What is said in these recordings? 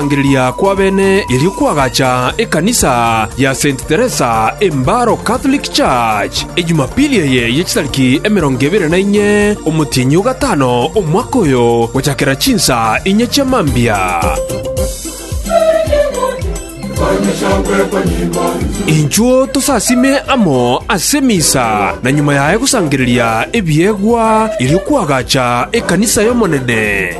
Okorangereria kw'abene erio kwagacha ekanisa ya Saint Teresa Embaro Catholic Church, e Jumapili eye ye chitariki emerongo ebere na inye omotienyi o gatano omwaka oyo, gochakera chinsa inye chia mambia. Inchuo tosasime amo ase emisa, na nyuma yaye gosangereria ebiegwa erio kwagacha ekanisa y'Omonene.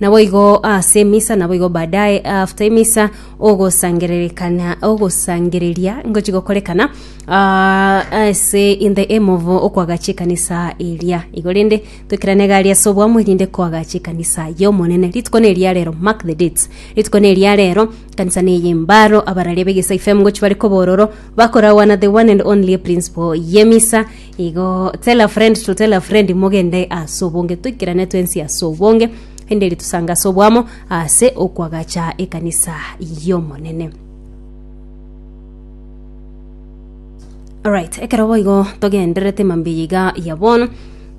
Naboigo aase emisa, naboigo baadaye after emisa ogosangererekana ogosangereria ngochi gokorekana ah, ase in the aim of okwagacha ekanisa eria igo rende tokerane gari ase obwamo erinde kwagacha ekanisa y'omonene rituko ne eria rero mark the dates rituko ne eria rero kanisa ne eyembaro abararia begesai fm ngochi bare kobororo bakorawana the one and only principle y'emisa Igo tell a friend to tell a friend mogende ase obonge toikerane twensi ase obonge enderi tusange ase obwamo ase okwagacha ekanisa y'omonene Alright, ekero boigo togendererete mambia yiga ya bono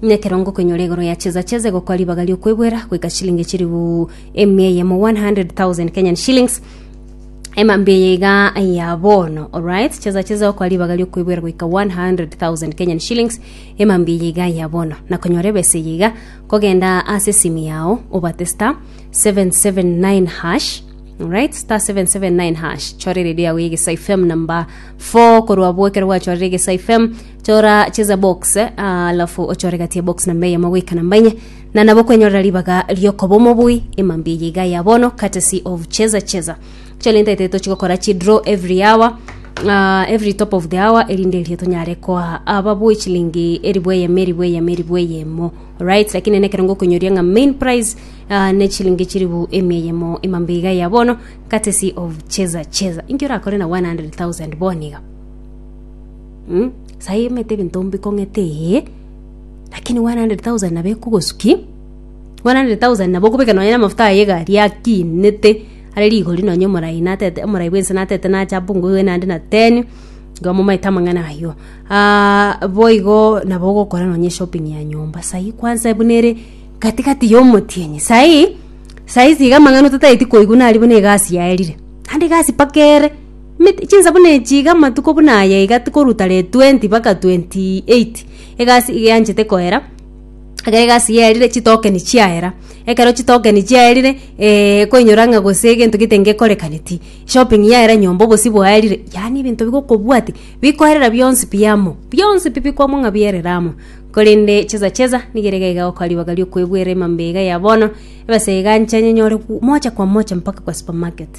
nekero ngokoinyora igoro ya cheza cheza egokwa ribaga riokwegwera goika chilingi chiribu emia eyemo 100,000 Kenyan shillings emambia eye iga ya bono alright chesa chesa okwa ribaga riokoibwera goika 100000 kenyan shillings emambia eye iga ya bono nakonyora ebesa eye iga kogenda ase esimi yao obate star 779 hash Alright, star 779 hash chora eredio yawe egesa fm number 4 korwa abwo ekero gwachorire egesa fm chora cheza box ah, alafu ochore gati ya box namba eyemo goika namba enye na nabo kwenyorera ribaga riokoba omobui ema mbuya eye iga ya bono courtesy of cheza cheza chalenta ete tochigokora chi draw every hour uh, every top of the hour erinde erio tonyare koa ababui chilingi eribu eyemo eribu eyemo eribu eyemo right lakini nene ekero ngokonyoria ng'a main price uh, ne chilingi chiribu emi eyemo ema mbuya iga ya bono courtesy of cheza cheza inki orakore na 100000 boniga mm? sai emete ebinto mbikong'ete eye Lakini 100,000 nabo ekogosukia, 100,000 nabo okobeka nonya namafuta aye egari akinete, are rigori nonya omorai natete omorai bwense natete nache apunguigwe naende na ten, igo amomaete amang'ana ayio. boigo nabo ogokora nonya eshopping ya nyomba, sai kwanza buna ere katikati ya omotienyi. Sai, sai iga iga amang'ana otatagete koigwa nari buna egasi yaerire, naende egasi mpaka ere, emete chinsa buna echi iga amatuko buna aya iga tikoruta re twenty mpaka twenty eight. Egasi iga yanchete koera, ekero egasi yaerire chitokeni chiaera. Ekero chitokeni chiaerire eeh koinyora ng'a gose egento gete ngekorekaneti, shopping yaera nyomba obosio bwaerire, yaani ebinto bigokobwatia bikoerera bionsi pi amo, bionsi pi bikwamwa ng'a bierire amo. Korende cheza cheza nigo ere iga egokoa ribaga riokoebuera emambia iga ya bono, ebesa egaanche nyenyore moja kwa moja mpaka kwa supermarket.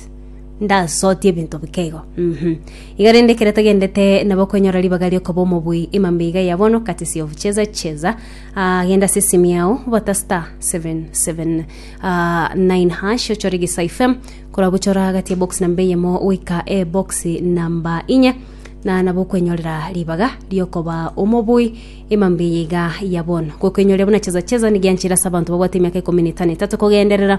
Ndasotie ebinto bike igo. Mhm. Iga rende ekero tagendete nabo kwenyora ribaga riokoba omobui emambe iga ya bono katisi of cheza cheza ah, genda ase esimu yao bata star 779 hash ochore gisa fm korwa buchora gati ebox namba eyemo goika ebox namba inye na nabo okwenyorera ribaga riokoba omobui emambe iga ya bono gokwenyoria buna cheza cheza nigianchira ase abanto babwate emiaka ikomi na etano etato kogenderera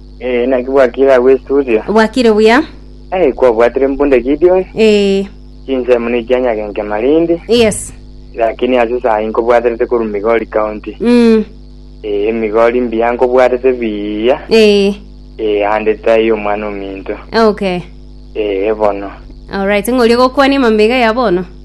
Eh, naki bwakire agwo estudio. Bwakire buya. Eh, kwabwatire mbunda Gideon. Eh, Chinsemo ne chia nyagenke Malindi. yes. Lakini ase sayi nkobwaterete koru Migori County. Mm. Eh, Migori mbiya nkobwarete biya. Eh, Eh, ande tayi omwana ominto. okay. Eh, bono. Alright, ng'oria gokwania mamega ya bono.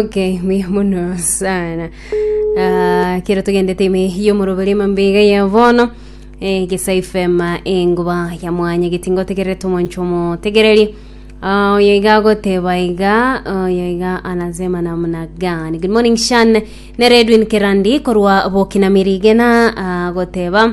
okay mbuya mono sana Ah, kero togendete ime yomoroberi mambega ya bono eh, gesa ifema enguba ya mwanya getingotegererete omoncho omotegereri Ah, oyo iga agoteba iga oyo iga anasema namna gani good morning shan nere edwin kerandi korwa bokinamiri gena agoteba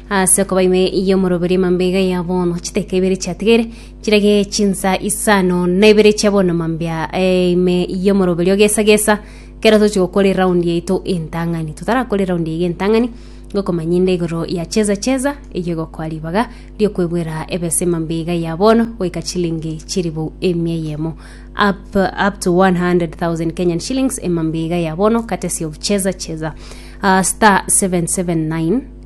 Ase okoba ime y'omoroberio mambia ya bono, chiteka ibere chiatigaire chirage chinsa isano na ibere chia bono mambia eh, ime y'omoroberio gesa gesa kero tochi gokora eraundi yaito entang'ani totarakora eraundi yaiga entang'ani ngokomanya inde igoro ya cheza cheza eyio egokoa ribaga riokwebwera ebesa emambia iga ya bono goika chilingi chiribu emia eyemo up, up to 100,000 Kenyan shillings emambia iga ya bono courtesy of cheza cheza uh, star 779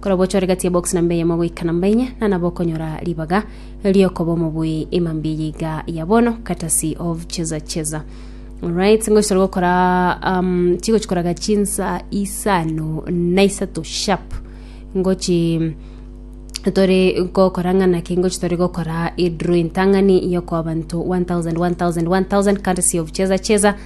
Kora gocha ore gati ya box namba eyemo goika namba enye na nabo okonyora ribaga riokoba omobui ema mbuya yiga ya bono courtesy of cheza cheza Alright, ngochitore gokora um, chigochikoraga chinsa isano na isato sharp ngochi tore gokora ng'ana ke ngochi tore gokora idro entang'ani yokoa banto 1000 1000 1000 courtesy of cheza cheza